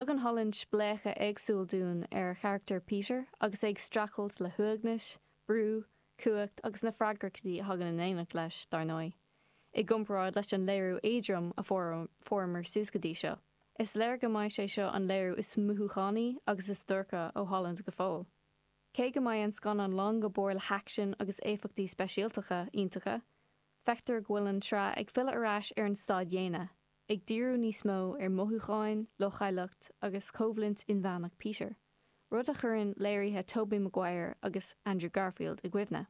Tugann Tom Holland spléachadh éagsúil dúinn ar charachtar Peter agus é ag streachailt le huaigneas, brú, cumhacht agus na freagrachtaí a thagann in éineacht leis, dar ndóigh. I gcomparáid leis an léiriú éadrom a fuaireamar suas go dtí seo, is léir go mbeidh sé seo an léiriú is mothúchánaí agus is duairce ó Holland go fóill. Cé go mbeidh an scannán lán go barr le haicsean agus éifeachtaí speisialtacha iontacha, feictear go bhfuil an tsraith ag filleadh ar ais ar an staid dhéine, ag díriú níos mó ar mhothúcháin, leochaileacht agus coimhlint inmheánach Peter, rud a chuireann léirithe Tobey Maguire agus Andrew Garfield i gcuimhne.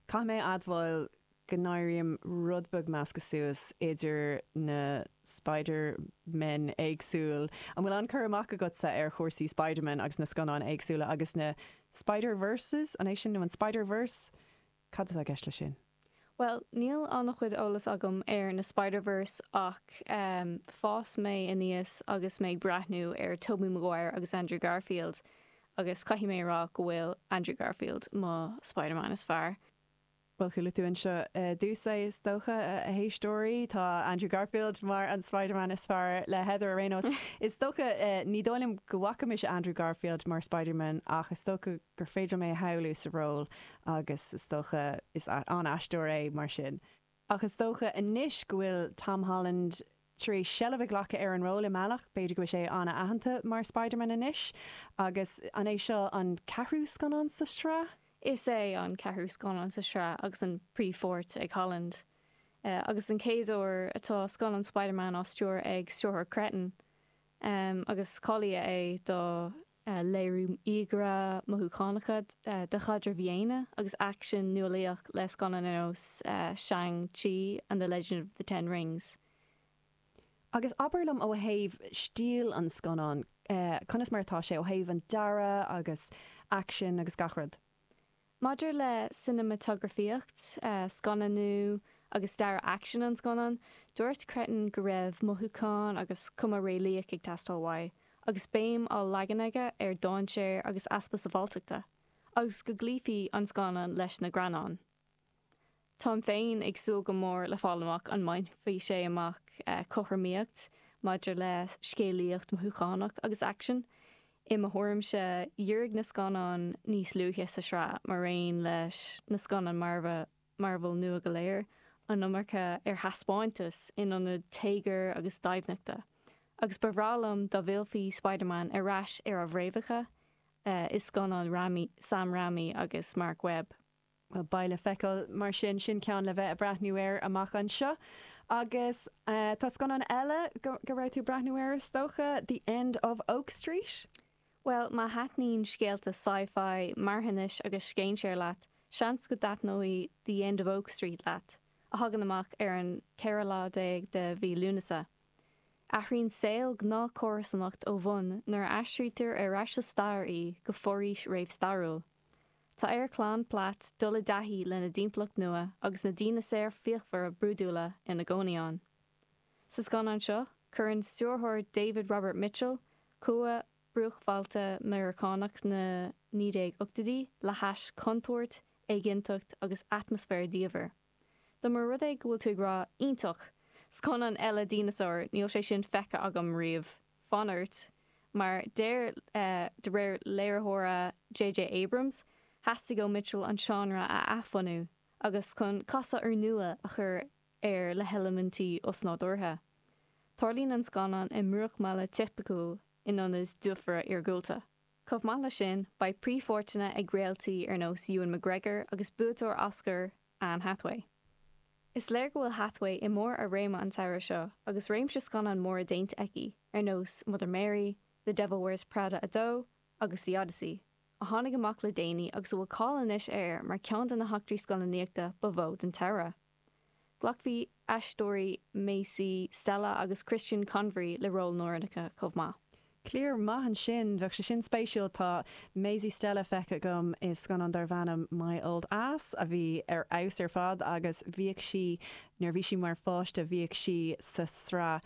Caithfidh mé a admháil go n-éirím rud beag measctha suas idir na Spider-Men éagsúil. An bhfuil an-cur amach agatsa ar chúrsaí Spider-Man agus na scannáin éagsúla agus na Spider-Verses, an é sin nó an Spider-Verse? Cad atá i gceist leis sin? Bhuel, níl an-chuid eolas agam ar na Spider-Verse ach fás mé aníos agus mé ag breathnú ar Tobey Maguire agus Andrew Garfield agus caithfidh mé a rá go bhfuil Andrew Garfield mo Spider-Man is fearr. Bhuel, chuala tú anseo ar dtús é is dócha, a éisteoirí, tá Andrew Garfield mar an Spider-Man is fearr le Heather ar aon nós, is dócha. Ní dóigh liom go bhfaca mise Andrew Garfield mar Spider-Man ach is dócha gur féidir liom é a shamhlú sa ról agus is dócha, is an-aisteoir é, mar sin, ach is dócha anois go bhfuil Tom Holland tar éis seilbh a ghlacadh ar an ról i mbealach, b'fhéidir go bhfuil sé an-aitheanta mar Spiderman anois, agus an é seo an ceathrú scannán sa sraith? Is é an ceathrú scannán sa sraith agus an príomhpháirt ag Holland, agus den chéad uair tá scannán Spiderman á stiúradh ag stiúrthóir Cretton, agus cáilíodh é do. a léiriú íogaire mothúchánacha de chaidrimh dhaonna agus aicsean nualaíoch le scannáin ar nós Shang Chi and the Legend of the Ten Rings. Agus abair liom ó thaobh stíl an scannáin, conas mar atá sé ó thaobh an dearadh agus aicsin agus gach rud? Maidir le cineamatagrafaíocht, scannánú agus dearadh aicsin an scannáin, dúirt Cretton go raibh mothúchán agus cuma réalaíoch ag teastáil uaidh agus béim á leagan aige ar dhainséar agus easpa sabháilteachta, agus go gcloífí an scannán leis na greannáin. Táim féin ag súil go mór le fáil amach an mbainfidh sé amach cothromaíocht maidir le scéalaíocht mhothúchánach agus aicsean. I mo thuairimse, dhírigh na scannáin níos luaithe sa tsraith, maraon leis na scannáin Marvel nua go léir, an iomarca ar thaispeántas in ionad téagair agus doimhneachta, agus ba bhreá liom dá bhfillfí Spider-Man ar ais ar a bhfréamhacha i scannáin Raimi, Sam Raimi agus Marc Webb. Beidh le feiceáil mar sin, sin ceann le bheith ag breathnú air amach anseo. Agus tá scannán eile go raibh tú ag breathnú air is dócha, The End of Oak Street? Bhuel, má thaitníonn scéalta sci-fi, marthanais agus scéinséir leat, seans go dtaitneoidh The End of Oak Street leat, a thagann amach ar an 14 lá de mhí Lúnasa. Athraíonn saol gnáthchomharsanacht ó bhun nuair a aistrítear ar ais sa stair í go foraois réamhstairiúil. Tá ar chlann Platt dul i dtaithí lena dtimpeallacht nua agus na díneasaeir fíochmhara brúidiúla ina gcónaí ann. Sa scannán seo, cuireann stiúrthóir David Robert Mitchell cumha bruachbhailte Meiriceánach na 1980idí le hais contúirt, éiginnteacht agus atmaisféar diamhair. Dá mba rud é go bhfuil tú ag rá 'Iontach! Scannán eile díneasair! níl sé sin feicthe agam riamh. Fan ort, mar de réir léiritheora JJ Abrams, theastaigh ó Mitchell an seánra a athbhunú agus chun casadh úrnua a chur air le heilimintí osnádúrtha. Tarlaíonn an scannán i mbruachbhaile tipiciúil in ionad dufaire iargúlta. Chomh maith leis sin, beidh príomhpháirteanna ag réaltaí ar nós Ewan McGregor agus buaiteoir Oscar Anne Hathaway. Is léir go bhfuil Hathaway i mbarr a réime an samhradh seo agus réimse scannán móra déanta aici, ar nós Mother Mary, The Devil Wears Prada 2 agus The Odyssey, a tháinig amach le déanaí agus a bhfuil cáil anois air mar cheann de na heachtraí scannánaíochta ba mhó den tsamhradh. Glacfaidh aisteoirí Maisy Stella agus Christian Convery le róil mór le rá chomh maith. Cliar maith ansin. Bheadh sé sin spéisiúil. Tá Maisy Stella feicthe agam i scannán darbh ainm My Old Ass a bhí ar fheabhas ar fad agus bhíodh sí, nuair a bhí sí mar pháiste, bhíodh sí sa sraith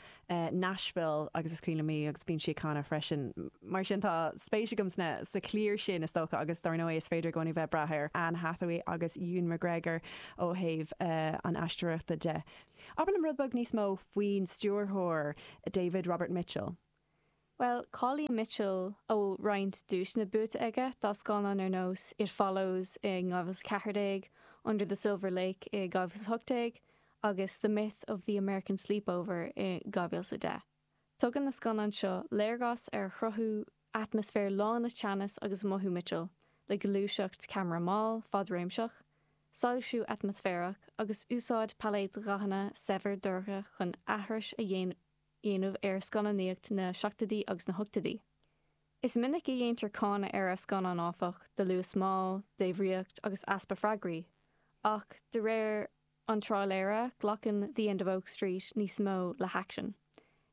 Nashville agus is cuimhin liom í agus bíonn sí ag canadh freisin. Mar sin tá spéis agam sa chliar sin is dócha agus dár ndóigh is féidir i gcónaí bheith ag brath ar Anne Hathaway agus Ewan McGregor ó thaobh an aisteoireachta de. Abair liom rud beag níos mó faoin stiúrthóir, David Robert Mitchell. Bhuel, tá cáil ar Mitchell, a bhfuil roinnt duaiseanna buaite aige dá scannáin ar nós It Follows i 2014, Under the Silver Lake i 2018 agus The Myth of the American Sleepover i 2010. Tugann na scannáin seo léargas ar chruthú atmaisféar lán le teannas agus mothú Mitchell, le gluaiseacht ceamara mall, fadréimseach, soilsiú atmaisféarach agus úsáid pailéad dhathanna saibhir dorcha chun aithris a dhéanamh. dhéanamh ar scannánaíocht na seachtoidí agus na hochtoidí. Is minic a dhéantar cáineadh ar a scannáin, áfach, do luas mall, débhríocht agus easpa freagraí, ach de réir an tráiléara, glacann The End of Oak Street níos mó le haicsean.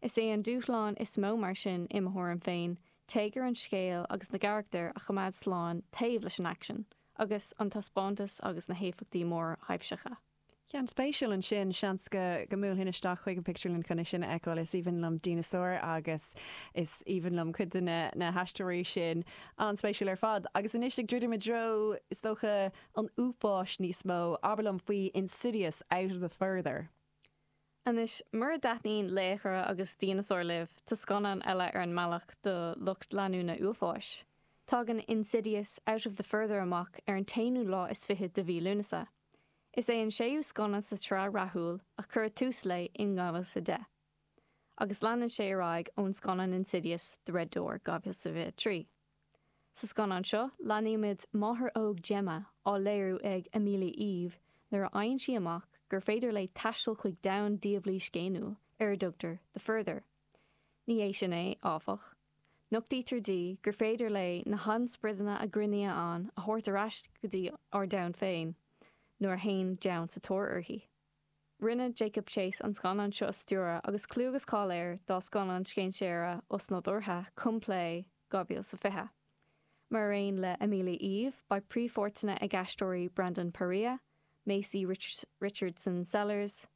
Is é an dúshlán is mó mar sin, i mo thuairim féin, téagar an scéil agus na gcarachtar a choimeád slán taobh leis an aicsean agus an taispeántas agus na héifeachtaí mórthaibhseacha. Ceann spéisiúil ansin, seans go mbuailfinn isteach chuig an pictiúrlann chun é sin a fheiceáil. Is aoibhinn liom díneasáir agus is aoibhinn liom cuid de na haisteoirí sin. An-spéisiúil ar fad. Agus anois ag druidim i dtreo, is dócha, an uafáis níos mó, abair liom faoi Insidious, Out of the Further. Anois, mura dtaitníonn laochra agus díneasáir libh, tá scannán eile ar an mbealach do lucht leanúna uafáis. Tagann Insidious, Out of the Further amach ar an t-aonú lá is fichead de mhí Lúnasa. Is é an séú scannán sa tsraith rathúil a cuireadh tús léi in 2010, agus leanann sé ar aghaidh ón scannán Insidious, The Red Door, 2023. Sa scannán seo, leanaímid máthair óg Gemma, á léiriú ag Amelia Eve, nuair a fhaigheann sí amach gur féidir léi taisteal chuig domhan diabhlaí scéiniúil ar a dtugtar The Further. Ní hé sin é, áfach. Nochtaítear di gur féidir léi na hainsprideanna a chónaíonn ann a thabhairt ar ais go dtí 'ár domhan féin' nuair a théann deamhan sa tóir uirthi. Rinne Jacob Chase an scannán seo a stiúradh agus clú agus cáil air dá scannán scéinséara osnádúrtha Come Play 2020, mar aon le Amelia Eve, beidh príomhpháirteanna ag na haisteoirí Brandon Perea, Maisie Richardson-Sellers,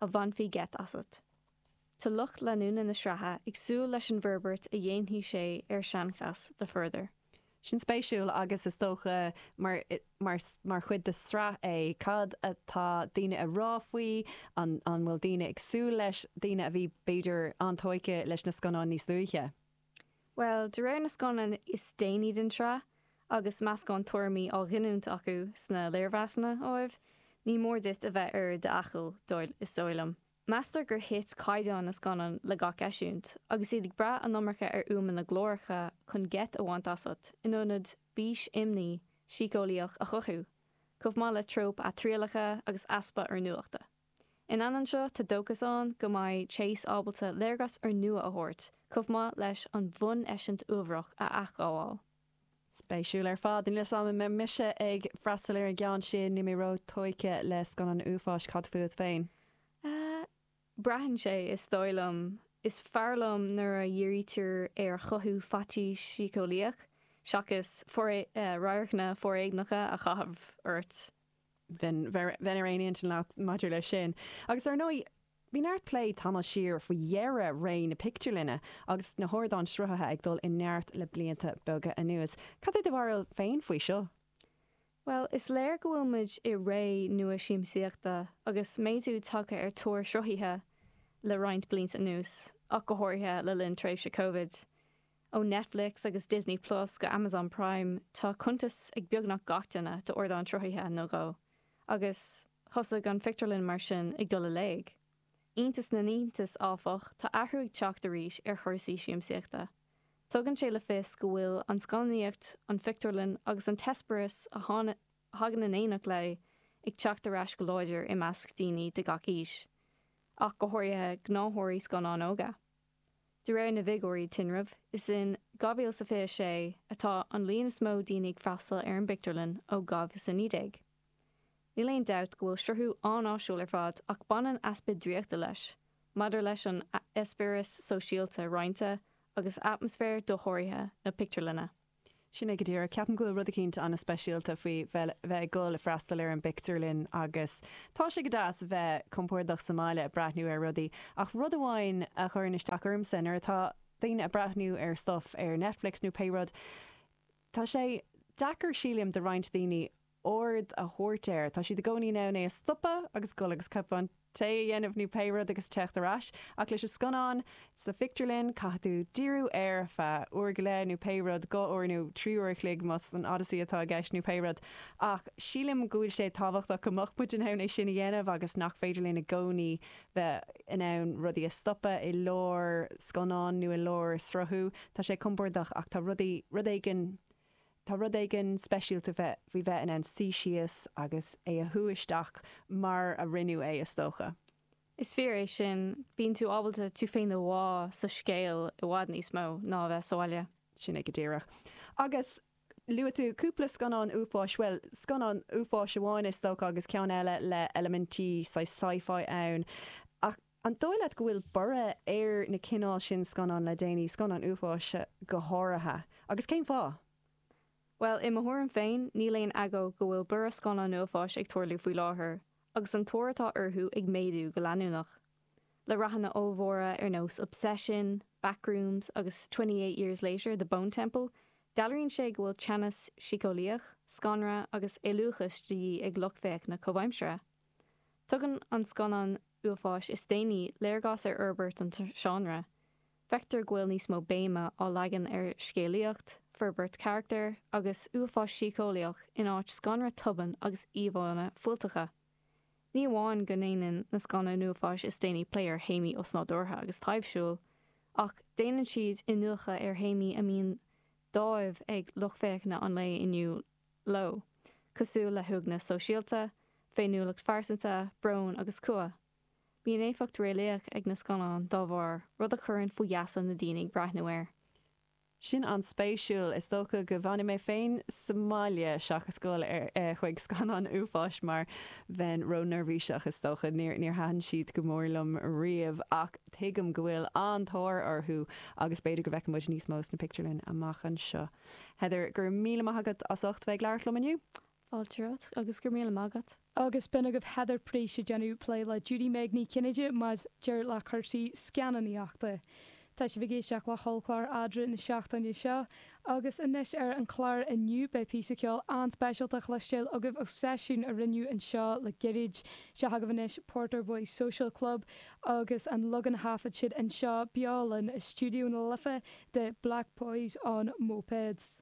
a bhainfí geit asat. Tá lucht leanúna na sraithe ag súil leis an bhforbairt a dhéanfaidh sé ar seanchas The Further. Sin spéisiúil agus is dócha mar chuid de sraith é. Cad atá daoine a rá faoi? An bhfuil daoine ag súil leis? Daoine a bhí b'fhéidir an-tóigthe leis na scannáin níos luaithe. Bhuel, de réir na scannán is déanaí den tsraith, agus meascán tuairimí á ghiniúint acu sna léirmheasanna, ámh, ní mór duit a bheith ar d'fhaichill, is dóigh liom. Meastar gur thit caighdeán na scannán le gach eisiúint, agus iad ag brath an iomarca ar fhuaimeanna glóracha chun geit a bhaint asat, in ionad bís imní síceolaíoch a chothú, chomh maith le tróip athriallacha agus easpa oiriúnachta. In ainneoin seo, tá dóchas ann go mbeidh Chase ábalta léargas úrnua a thabhairt, chomh maith leis an bhun-eisint uamhnach a athghabháil. Spéisiúil ar fad. Níl 'fhios a'm an mbeidh mise ag freastal ar an gceann sin, níl mé ró-tóigthe le scannáin uafáis, cad fút féin? Ahh. braitheann sé, is dóigh liom. Is fearr liom nuair a dhírítear ar chothú faitís shíceolaíoch seachas radharcanna foréigneacha a chaitheamh ort. bheinn ar aon intinn leat maidir leis sin. Agus dar ndóigh, bhí neart plé tamall siar faoi dheireadh ré na pictiúrlainne agus na hardáin sruthaithe ag dul i neart le blianta beaga anuas. Cad é do bharúil féin faoi seo? Bhuel, is léir go bhfuil muid i ré nua siamsaíochta agus méadú tagtha ar tóir sruthaithe le roinnt blianta anuas, ach go háirithe le linn tréimhse Covid. Ó Netflix agus Disney Plus go Amazon Prime, tá cuntas ag beagnach gach duine d'ardán sruthaithe nó dhó, agus thosaigh an phictiúrlann mar sin ag dul i léig. Iontas na n-iontas, áfach, tá athrú ag teacht arís ar chúrsaí siamsaíochta. Tugann sé le fios go bhfuil an scannánaíocht, an phictiúrlann agus an t-eispéireas a thagann in éineacht léi ag teacht ar ais go láidir i measc daoine de gach aois, ach go háirithe gnáthóirí scannán óga. De réir na bhfigiúirí tinrimh, is in 2026 atá an líon is mó daoine ag freastal ar an bpictiúrlann ó 2019. Níl aon dabht go bhfuil sruthú an-áisiúil ar fad ach baineann easpa draíochta leis maidir leis an eispéireas sóisialta roinnte agus atmaisféar dosháraithe na pictiúrlainne. Sin é go díreach. Ceapaim go bhfuil rud eicínt ana-speisialta faoi bheith ag dul ag freastal ar an bpictiúrlann agus tá sé go deas bheith compordach sa mbaile ag breathnú ar rudaí ach rud amháin a chuireann isteach ormsa, nuair atá daoine ag breathnú ar stuff ar Netflix nó pé rud, tá sé deacair, sílím, do roinnt daoine aird a thabhairt air. Tá siad i gcónaí in ann é a stopadh agus goil agus cupán tae a dhéanamh nó pé rud agus teacht ar ais. Ach leis an scannán, sa phictiúrlann, caithfidh tú díriú air ar feadh uair go leith nó pé rud, dhá uair nó trí uair a chloig más an Odyssey atá i gceist nó pé rud. Ach sílim go bhfuil sé tábhachtach go mbeadh muid in ann é sin a dhéanamh agus nach féidir linn i gcónaí bheith in ann rudaí a stopadh i lár scannáin nó i lár sruthú. Tá sé compordach ach tá rudaí, rud éigin, Tá rud éigin speisialta faoi bheith in ann suí síos agus é a shú isteach mar a rinneadh é, is dócha. Is fíor é sin, bíonn tú ábalta tú féin a bhá sa scéal i bhfad níos mó ná a bheith sa bhaile. Sin é go díreach. Agus luaigh tú cúpla scannán uafáis, bhuel, scannán uafáis amháin is dócha agus ceann eile le eilimintí saghas Sci-Fi ann, ach An dóigh leat go bhfuil borradh ar na cineál sin scannán le déanaí, scannáin uafáis go háirithe, agus cén fáth? Bhuel, i mo thuairim féin, níl aon agó go bhfuil borradh scannán uafáis ag tarlú faoi láthair, agus an tóir atá orthu ag méadú go leanúnach. Le rathanna ollmhóra ar nós Obsession, Backrooms agus Twenty Eight Years Later, The Bone Temple, dealraíonn sé go bhfuil teannas síceolaíoch, scanradh agus éalúchas de dhíth ag lucht féachana comhaimseartha. Tugann na scannáin uafáis is déanaí léargas ar fhorbairt an seánra. Feictear go bhfuil níos mó béime á leagan ar scéalaíocht, forbairt carachtar agus uafás síceolaíoch in áit scanradh tobann agus íomhánna fuilteacha. Ní amháin go ndéanann na scannáin uafáis is déanaí plé ar théamaí osnádúrtha agus taibhsiúil ach déanann siad iniúchadh ar théamaí a mbíonn dáimh ag lucht féachana an lae inniu leo. leo, cosúil le huaigneas sóisialta, féiniúlacht phearsanta, brón agus cumha. Bíonn éifeacht réalaíoch ag na scannáin dá bharr, rud a chuireann faoi gheasa na daoine ag breathnú air. Sin an-spéisiúil. Is dócha go bhfanfaidh mé féin sa mbaile seachas gabháil chuig scannáin uafáis mar bheinn ró-neirbhíseach, is dócha. Níor thaitin siad go mór liom riamh ach tuigim go bhfuil an-tóir orthu agus b'fhéidir go bhfeicfidh muid níos mó sna pictiúrlanna amach anseo. Heather, go raibh míle maith agat as ucht bheith ag labhairt liom inniu. Fáilte romhat, agus go raibh míle maith agat. Agus b'in agaibh Heather Price ag déanamh plé le Judy-Meg Ní Chinnéide maidir le cúrsaí scannánaíochta. Tá sibh ag éisteacht le hollchlár eadra na seachtaine seo, agus anois ar an chlár inniu beidh píosa ceoil an-speisialta a chloistéail agaibh ó seisiún a rinneadh anseo le gairid. Seo agaibh anois Porter Boys Social Club agus an leagan a thaifead siad anseo beo linn i Stiúideo na Life de 'Black Boys on Mopeds'.